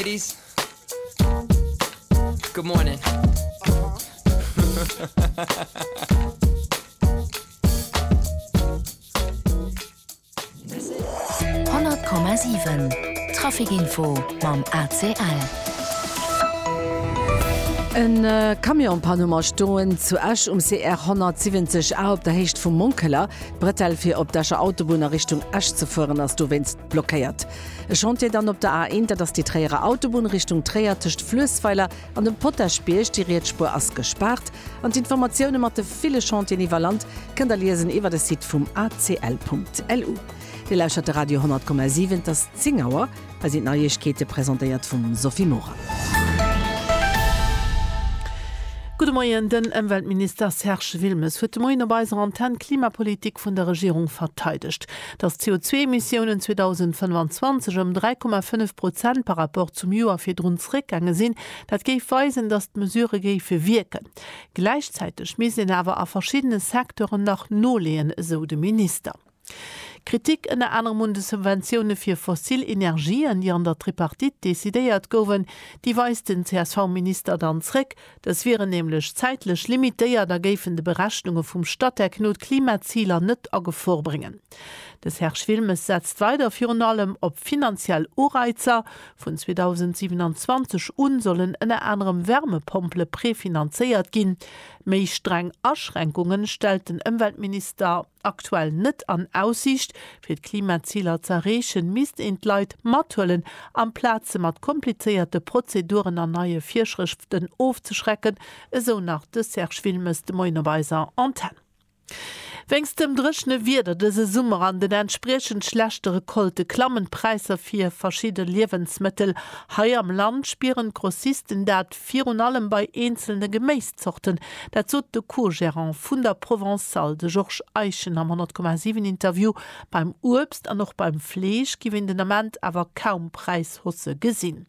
Ladies, good morning. Honnert Komma siwen, Trafikinfo mam ACL. E Camion panne mam Stoen zu Esch um CR 170 A op der Héicht vum Monkeler. D'Bretelle fir op d'Escher Autobunn a Richtung Esch ze fueren ass dowéinst blockéiert. E Chantier dann op der A1, dat ass déi Tréierer Autobunn Richtung Tréier tëscht Fluessweiler an dem Potaschbierg. Déi riets Spuer ass gespaart an d'Informatioune mat de ville Chantieren iwwer Land kënnt der liesen iwwer de Site vum acl.lu. Dir lauschtert de Radio 10,7, et ass 10 Auer. Hei sinn d'Neiegkeete presentéiert vum Sophie Morang. Gudde Moien, Den Ëmweltminister Serge Wilmes huet de Moien op eiser Antenn d'Klimapolitik vun der Regierung verteidegt. dass d'CO2-Emissiounen 2025 ëm 3,5 Prozent par rapport zum Joer virdrun zeréckgaange sinn, dat géif weisen, dass d'Mesurë géife wierken. Gläichzäiteg misst een awer a verschiddene Secteuren nach noleeën, esou de Minister. Kritik ënner anerem un de Subventioune fir fossil Energien, déi an der Tripartite decidéiert goufen. Déi weist den CSV-Minister dann zeréck. Dës wieren nämlech zäitlech limitéiert a géifen de Berechnunge vum Statec no d'Klimaziler net a Gefor bréngen. De Serge Wilmes setzt weider virun allem op finanziell Ureizer. Vun 2027 u sollen ënner anerem Wärmepompele prefinanzéiert ginn. Méi streng Aschränkunge stellt den Ëmweltminister. aktuell net an Aussiicht. Fir d'Klimaziler z'erreechen, misst een d'Leit mathuelen, amplaz se mat komplizéierte Prozeduren an neie Virschrëften ofzeschrecken, esou nach de Serge Wilmes de Moien op eiser Antenn. Wéinst dem dréchene Wieder dëse Summer an den entspriechend schlechte Recolte klammen d'Präisser fir verschidde Liewensmëttel. Hei am Land spieren d'Grossisten dat. Virun allem bei eenzelne Geméiszorten, dat sot de Co-Gerant vun der Provençale, de Georges Eischen am 10,7 Interview. Beim Uebst an och beim Fleesch giff een den Ament awer kaum Präishausse gesinn.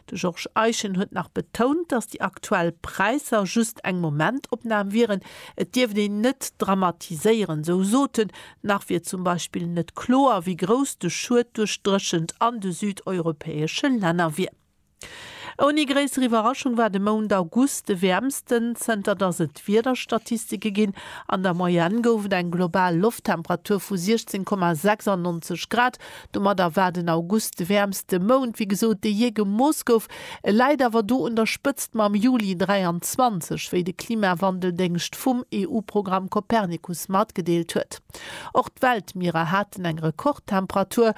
De Georges Eischen huet nach betount, datt déi aktuell Präisser just eng Momentopnam wieren. Et dierft een net dramatiséieren, sou sot en. Nach wier zum Beispill net kloer, wéi grouss de Schued duerch d'Dréchent an de südeuropäesche Länner wier. Ouni gréisser Iwwerraschung war de Mount August de wäermsten, zënter datt et Wiederstatistike ginn. An der Moyenne gouf et eng global Lofttemperatur vu 16,96 Grad. Domadder war den August de wäermste Mount, wéi gesot, dee jee gemooss gouf. E läit awer do un der Spëtzt mam Juli 23, wéi de Klimawandeldéngscht vum EU-Programm Copernicus matgedeelt huet. Och d'Weltmierer haten eng Rekordtemperatur.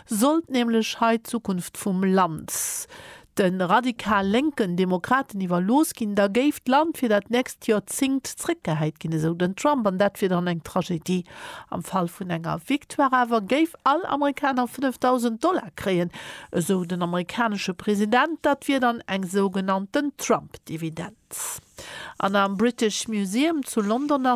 Sollt nämlech hei d'Zukunft vum Land de radikal lénken Demokraten iwwerlooss ginn, da géif d'Land fir dat nächst Joerzingt zréckgehäit ginn, esou den Trump. An dat wier dann eng Tragedie. Am Fall vun enger Victoire awer géif all Amerikaner 5.000 Dollar kréien, esou den amerikanesche President. Dat wier dann eng sougenannten Trump-Dividend. An am British Museum zu London ass.